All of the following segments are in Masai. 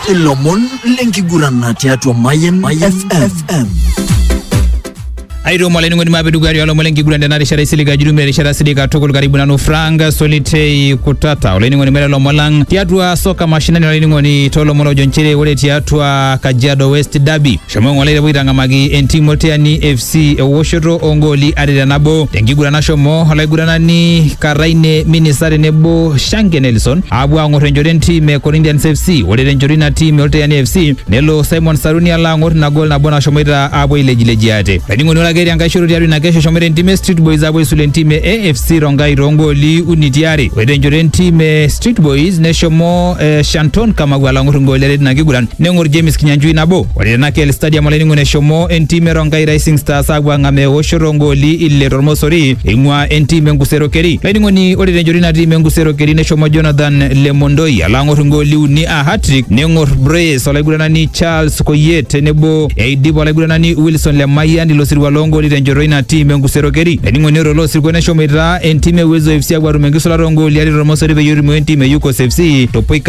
ilomon lenkiguran tiatua Mayan FM. airiwam olainining'oni maape dukuya tiolomon lenkiguran tena rishata isilig ajurumia erishata silig katukul karibu nanu frank solitei kutata olainining'oni mera lomon lang tiatua soka mashinani olainining'oni toolomon ojo nchere ore tiatua kajiado west derby Shomo ng'ole epuo aitang'amaki entim Oltiani FC ewoshoto oongooli are te nabo tenkiguran nashomo olaiguranani Karaine Minisa tenebo Shange Nelson aapuo aang'or enchoto entim e Corinthians FC. Ore tenchoto ina tim e Oltiani FC nelo Simon Saruni alo aang'or ina gol nabo nashomoita aapuo ailejilejie ate. Olainining'oni ore ake etii enkae shoto tiatua ina kesho eshomoita entim e Street Boys aapuo aisula entim e AFC Rongai toongooli uni ti are. Ore tenchoto entim e Street Boys neshomo eh, Shanton Kamau alo aang'or ingooli are tina kiguran. neng'or James Kinyanjui nabo ore tena KL Stadium olainining'oni eshomo entim e Rongai Rising Stars aapuo ang'amaa eoshoto oongooli ile tormosori eing'ua entim e Nkusero Keri. Olainining'oni ore tenchoto ina tim e Nkusero Keri neshomo Jonathan Lemondoi alo ang'or ingooli uni aa hat-trick neng'or Brace olaiguranani Charles Koyie tenebo eidip olaiguranani Wilson Lemayian ilo sirua loongooli tenchoto ina tim e Nkusero Keri. Olainining'oni ore ilo sirua neshomoita entim e Uwezo FC aapuo aatum enkisulata oongooli are tormosori peyie erumoo entim e Yukos FC to poika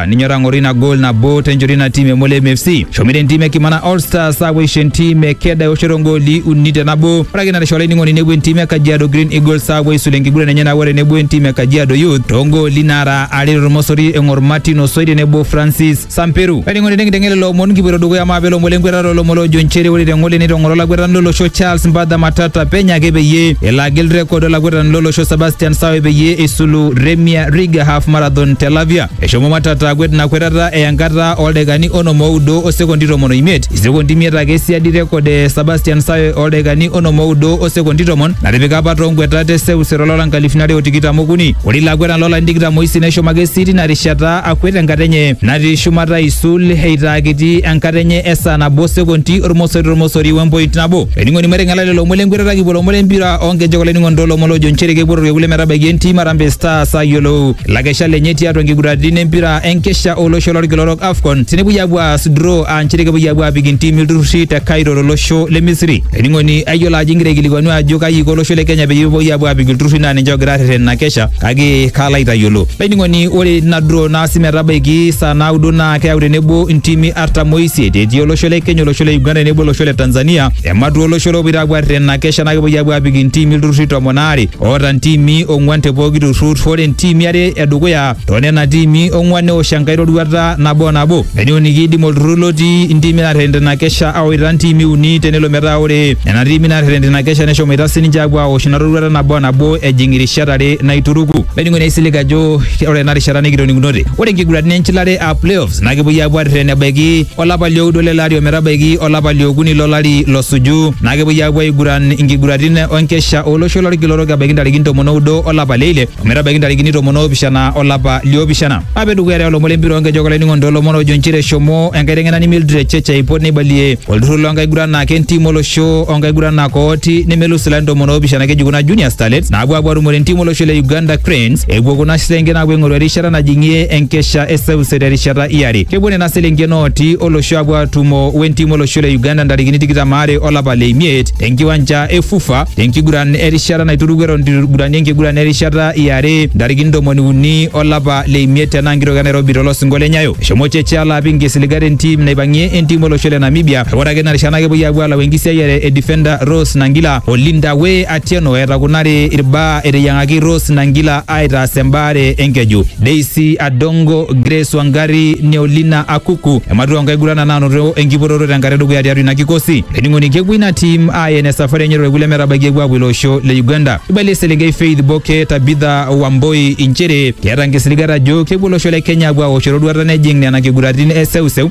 aninyoraa ng'oru ina goal nabo tenchoto ina tim e Molem FC. Eshomoita entim e Kimana All Stars aapuo aisho entim e Keda eoshoto ngooli uni te nabo. Ore ake natisho olainining'oni nepuo entim e Kajiado Green Eagles aapuo aisulu enkiguran enye nabo tenebo entim e Kajiado Youth too ngooli naara are tormosori eng'or Martin Osoi tenebo Francis Samperu. Olainining'oni tenkiteng'ela lelo omon kipuoito dukuya maa pelo ng'ole enkwetata olomon loojo nchere ore te ng'ole neitong'oro olakwetani lolosho Charles Mbadha Matata penyo ake peyie elo agil rekod olakwetani lolosho Sebastian Sawe peyie eisulu Remia Riga half marathon Marathon te Lavia. Eshomo Matata akwet ina kwetata eya enkata ooldaikani onom oudo o sekondi tomon oimiet, isekondi imiet ake siadi rekod e Sebastian Sawe ooldaikani onom oudo o sekondi tomon natipika apa too nkwetat e seuseu tolari lonkalifuni are o tikitam okuni. Ore ilo akwetani loolarin tikitam oisiet neshomo ake sii tina rishata akwet enkata enye natii shumata aisul eitaa kiti enkata enye e saa nabo o sekondi ormosori tormosori we mpoint nabo. Olainining'oni maiteng'ela lelo omon le nkwetata kipuo lomon le mpira oo nkejek olainining'oni too lomon loojo nchere kepuo torkekun le metabaiki entim Harambee Stars ayiolou lakesha lenye tiatua nkiguraritin empira enkesha olosho lorkila orok AFCON tenepuoi apuo aas draw aa nchere kepuoi apuo apik intiimi ilturrurri te Cairo tolosho le Misri. Ening'oni ayiolo ajo ingira aikilikuanu ajo kaji iko olosho le Kenya peyie epuoi apuo apik ilturrurri naa ninche ogira arreten ina kesha kake kaalo aitayiolo. Ening'oni ore ina draw naasi metabaiki saa naudo naa keyau tenebo intiimi artam oisiet etii olosho le Kenya, olosho le Uganda tenebo olosho le Tanzania ematua olosho lopoito apuo arreten ina kesha naa kepuoi apuo apik intiimi ilturrurri tomon aare oota ntiimi ong'uan te pooki turrur ore ntiimi are edukuya too nena tiimi ong'uan neosh enkae roruata nabo o nabo eneuni kiidim olturrur lotii intiimi naarrerena ina kesha awaita ntiimi uni tenelo metaa ore nena tiimi naarrerena ina kesha neshomoita sininche aapuo aosh ina roruata nabo o nabo ejing irishat are naituruku olainining'oni aisilig ajo ore ena rishata nikitoning'unote ore nkiguraniti enchilare aa playoffs na kepuoi aapuo arreten ebaiki olapa lioudo lele ari ometabaiki olapa liokuni lolari losuju na kepuoi aapuo aiguran inkiguratin onkesha olosho lorkila orok ebaiki ntarikini tomon oudo olapa leile ometabaiki ntarikini tomon oopishana olapa liopishana ape dukuya te olomon lempira onkejek olainining'oni toolomon ojo nchere eshomo enkaiteng'enani Mildred Cheche aipot neibalie olturrur loonkaguranak entim olosho onkaguranak ooti nemelus ilarin tomon oopishana keji kuna junior starlets naapuo aapuo atumore entim olosho le Uganda Cranes epuo kuna sesenken aapuo aing'oru erishata erishata najing'ie enkesha e seuse terishata iare. Kepuo nena selenken ooti olosho apuo atumo wentim olosho le Uganda ntarikini tikitam aare olapa le imiet tenkiwanja e Fufa tenkiguran erishata naituruku eton itu igurani enkiguran erishata iare ntarikini ntomoni uni olapa le imiet tena nkitok e Nairobi tolosingo le Nyayo. Eshomo Cheche alo apik nkisiligat entim naipang'ie entim olosho le Namibia. Ore ake ina rishata naa kepuoi apuo alau enkisiayiare e defender Rose Nangila o Linda Way Atieno etakunari irbaa eteyiang'aki Rose Nangila aitaas embaare enkeju. Daisy Adongo, Grace Wangari, Neolina Akuku ematua nkaigurana naanoto enkipototo tenkata edukuya tiatua ina kikosi. Ening'oni kepuo ina tim ayen esafari enye torkule metabaiki epuo apuo ilo osho le Uganda. Eibalie eselenkei Faith Boke Tabitha Wamboi inchere keeta nkisiligat ajo kepuo olosho le Kenya apuo aosh eroruata nejing nena kiguratin e seuseu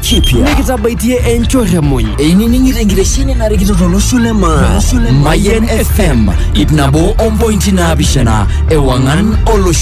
kipya nikitabaitie enchorremuny einining'ito enkitesheni narikito tolosho le maa mayian fm ip nabo ompointi naapishana ewang'an olosho